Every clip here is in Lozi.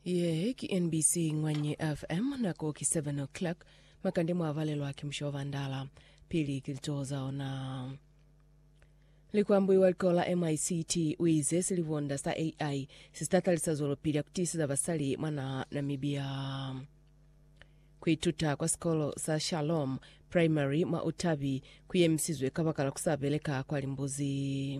Ye ki NBC Ngwanye FM, nako ki 7 o'clock. Makande mwa valelwa ki musho wa bandala. Pili ki litoho za ona. Likwambui wa likolo la MICT u ize silivonda sa AI si ta talisa zwelopili ya ku tiiseza basali mwa naha Namibia. Ku ituta kwa sikolo sa Shalom Primary mwa Utabi ku yemisizwe kabakala ku sa beleka kwa limbuzi.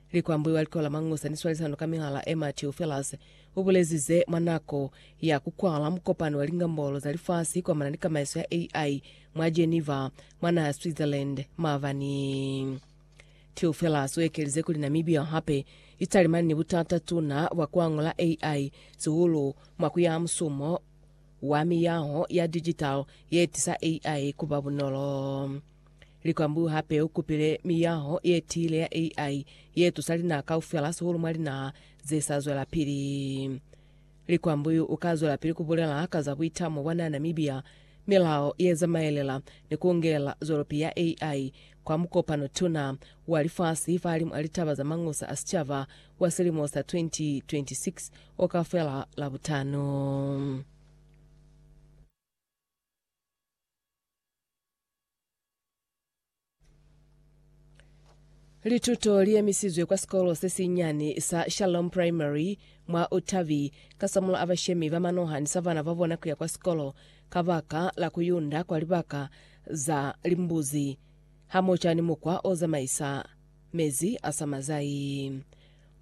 Likwambo wa Likola Mangusa ni Swalisano ka Mihala e Matthew Phillas u bulezi ze mwa nako ya ku kwala mukopano wa Lingambolo za Lifasi kwamana ni Kamaiso ya AI mwa Geneva mwa naha ya Switzerland maabani. Theo Phillas u ekelize kuli Namibia hape i talimani ni butata tuna bwa ku angula AI, sihulu mwa ku yaha musumo wa miyaho ya digital ye tisa AI ku ba bunolo. Likwambu hape u kupile miyaho ye tiile ya AI ye tusa linaha kaufela sihulu mwa linaha ze sa zwelapili. Likwambu yu u ka zwelapili ku bulela ka za buitamo bwa na Namibia, milao ye zamaelela ni ku ngelela zwelopi ya AI kwa mukopano tuna wa lifasi fahalimw'a litaba za mañusa a sicaba wa silimo sa 2026 o ka fela Labutano. Lituto liemisizwe kwa sikolo sesinyani sa Shalom Primary mwa Otavi kasamula a bashemi ba manoha ni sa bana babona kuya kwa sikolo kabaka la kuyunda kwa libaka za limbuzi hamoca ni mukwa ozamaisa mezi a sa mazai.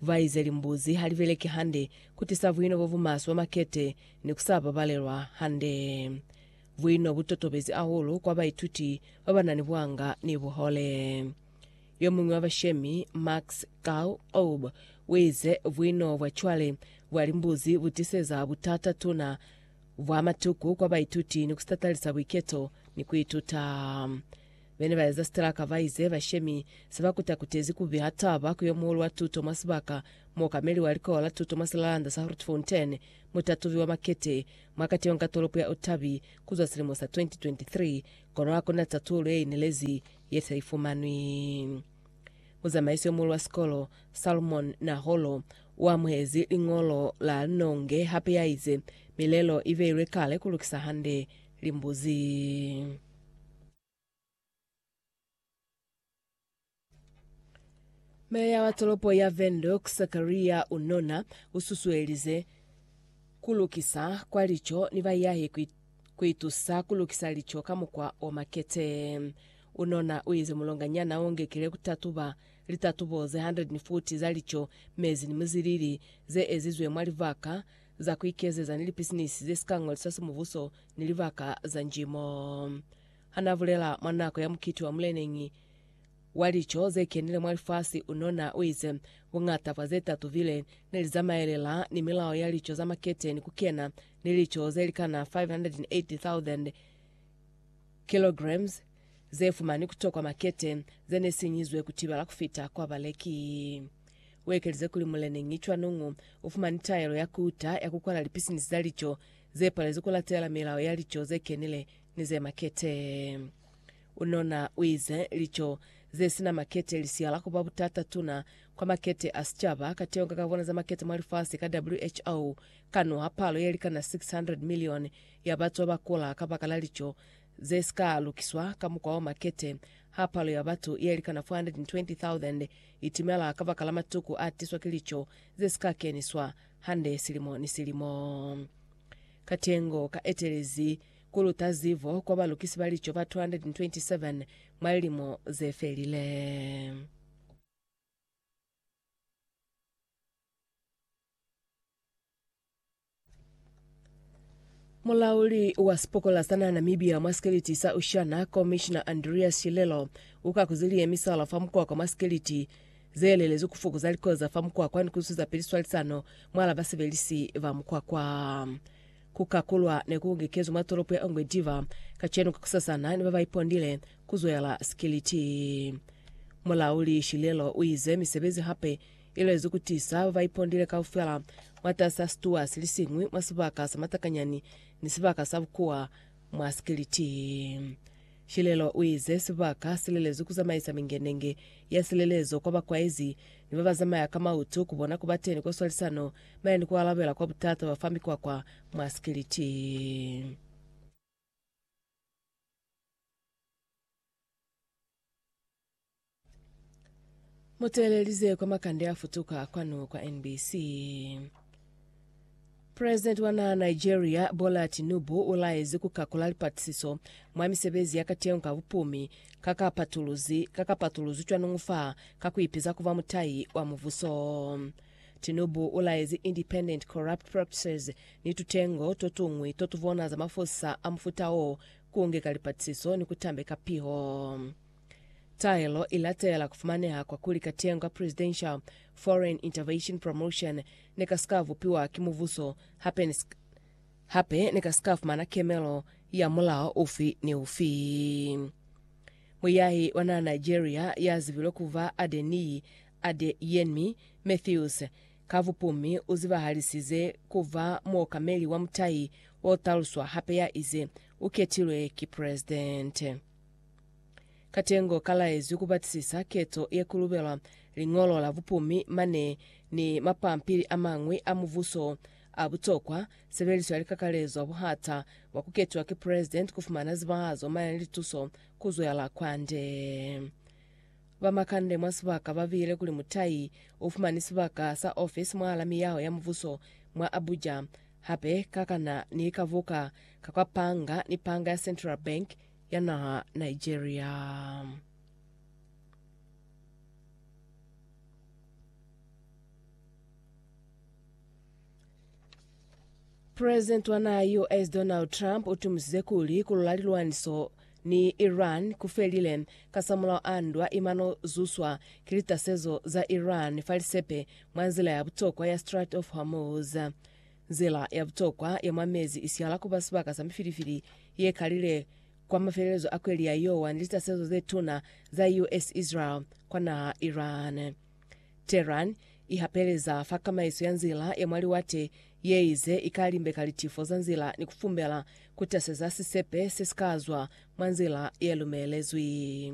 Baize limbuzi halibeleki hande, kutisa buino bobumaswe bwa makete ni kusa babalelwa hande. Buino bu totobezi hahulu kwa baituti ba ba na ni buhanga ni buhole. Yo muñwi wa bashemi, Max Carl Oub, u ize, Buino bwa cwale bwa limbuzi bu tiseza butata tuna bwa matuku kwa baituti ni ku sitatalisa buiketo ni ku ituta. Be ne ba eza sitalaka ba ize bashemi se ba kuta-kutezi ku biha taba ku yo muhulu wa tuto mwa sibaka, muokameli wa Likola la Tuto mwa Silalanda sa Grootfontein, mutatubi wa makete Mwa kationga tolopo ya Otavi kuzwa silimo sa 2023, kono hakuna tatulo yeinelezi yesaifumanwi. Muzamaisi yomuhulu wa sikolo, Salmon Naholo, uamuhezi liñolo la Nonge hape yaize, Milelo ibeilwe kale kulukisa hande limbuzi. Meya wa tolopo ya Windhoek, Sakaria Unona, ususuelize kulukisa kwa lico ni bayahi kuitusa kulukisa lico ka mukwa o makete. Unona uize mulonganyana ungekile kutatuba litatubo ze 140 za lico, mezi ni muzilili zeezizwe mwa libaka za ku ikezeza ni lipisinisi ze si ka ñoliswa semubuso ni libaka za njimo. Ha n'a bulela mwa nako ya mukiti wa muleneñi wa lico ze kenile mwa lifasi, unona u ize, Buñata bwa ze tatubile ne li zamaelela ni milao ya lico za makete ni ku kena ni lico ze likana 580,000 kilograms, ze fumani ku tokwa makete ze ne sinyizwe ku tibala ku fita kwa baleki. U ekelize kuli muleneñi cwanong u fumani taelo ya ku uta ya ku kwala lipisinisi za lico ze palezi ku latelela milao ya lico ze kenile ni ze makete. U nona u ize, Lico ze si na makete li siyala ku ba butata tuna kwa makete a sicaba ka teyo nga ka bona za makete mwa lifasi ka WHO ka nwaha palo ye likana 600 milioni ya batu ba kula kabakala lico ze si ka lukiswa ka mukwa wa makete, ha palo ya batu ye likana 420,000 i timela kabakala matuku a tiswa ki lico ze si ka keniswa hande silimo ni silimo. Katengo ka etelezi ku luta zibo kwa balukisi ba lico ba 227 mwa lilimo ze felile. Mulauli wa sipokola sa naha Namibia mwa sikeliti sa Oceana, Commissioner Andreas Shilelo, uka ku zili ye misala fa mukwakwa mwa sikeliti, zeelelezwi ku fokoza likoza fa mukwakwa ni ku zuza pili swalisano mwala basebelisi ba mukwakwa. Ku kakulwa ne ku ungekezwi mwa tolopo ya Ongwe Diva kacenu ka kusasana ni ba ba ipondile ku zwela sikeliti. Mulauli Shilelo uize misebezi hape Ilezi kutiisa ba ba ipondile kaufela mwatasaa situwa silisiñwi mwa sibaka sa matakanyani ni sibaka sa bukuwa mwa sikiliti. Shilelo uize sibaka silelezi kuzamaisa mingenenge ya silelezo kwa bakwaezi ni baba zamaya ka mautu kubona kubateni kwa swalisano maya ni kualabela kwa butata bafa mikwakwa mwa sikiliti. Muteelelize kwa makande afutuka kwanu kwa NBC. President wa naha Nigeria Bola Tinubu ulaezi kukakula lipatisiso mwa misebezi yakateñi ka bupumi kakapatuluzi kakapatuluzi cwanungu fa kakuipeza kuba mutayi wa mubuso. Tinubu ulaezi Independent Corrupt Practices ni tutengo totungwi totubona za mafosisa a mufuta oo kuungeka lipatisiso ni kutambeka piho. Taelo i latela ku fumaneha kwa kuli katengo ka Presidential Foreign Intervention Promotion ne ka si ka bupiwa ki mubuso hape ne si ka, hape ne ka si ka fumana kemelo ya mulao ufi ni ufi. Muyahi wa naha Nigeria ya zibilwe ku ba Adeniyi Adeyenmi Mathews, ka bupumi u zibahalisize ku ba muokameli wa mutahi o taluswa hape ya ize u ketilwe ki presidente. Katengo kalaezwi kubatisisa ketso ye kulubelwa liñolo la bupumi mane ni mapampili amañwi a mubuso a butokwa, sebeliso ya likakalezo buhata bwa kuketiwa ki President, kufumana zibahazo mane ni lituso kuzwela kwande. Ba makande mwa sibaka babile kuli mutai ufumani sibaka sa office mwahala miyaho ya mubuso mwa Abuja, hape kakana ni likabuka ka kwa panga ni panga ya Central Bank, ya naha Nigeria. President wa naha US Donald Trump utumisize kuli kulula lilwaniso ni Iran kufelile kasamulaho a ndwa imano zuswa ki litasezo za Iran fa lisepe mwa nzila ya butokwa ya Strait of Hormuz. Nzila ya butokwa ya mwa mezi i sihala ku ba sibaka sa mifilifili ye kalile kwa mafelelezo a kweli ya Yowa ni litasezo ze tuna za US-Israel kwa naha Iran. Tehran i hapeleza fa kamaiso ya nzila ya mwa liwate ye ize i ka limbeka litifo za nzila ni ku fumbela ku taseza sisepe se si ka zwa mwa nzila ye lumelezwi.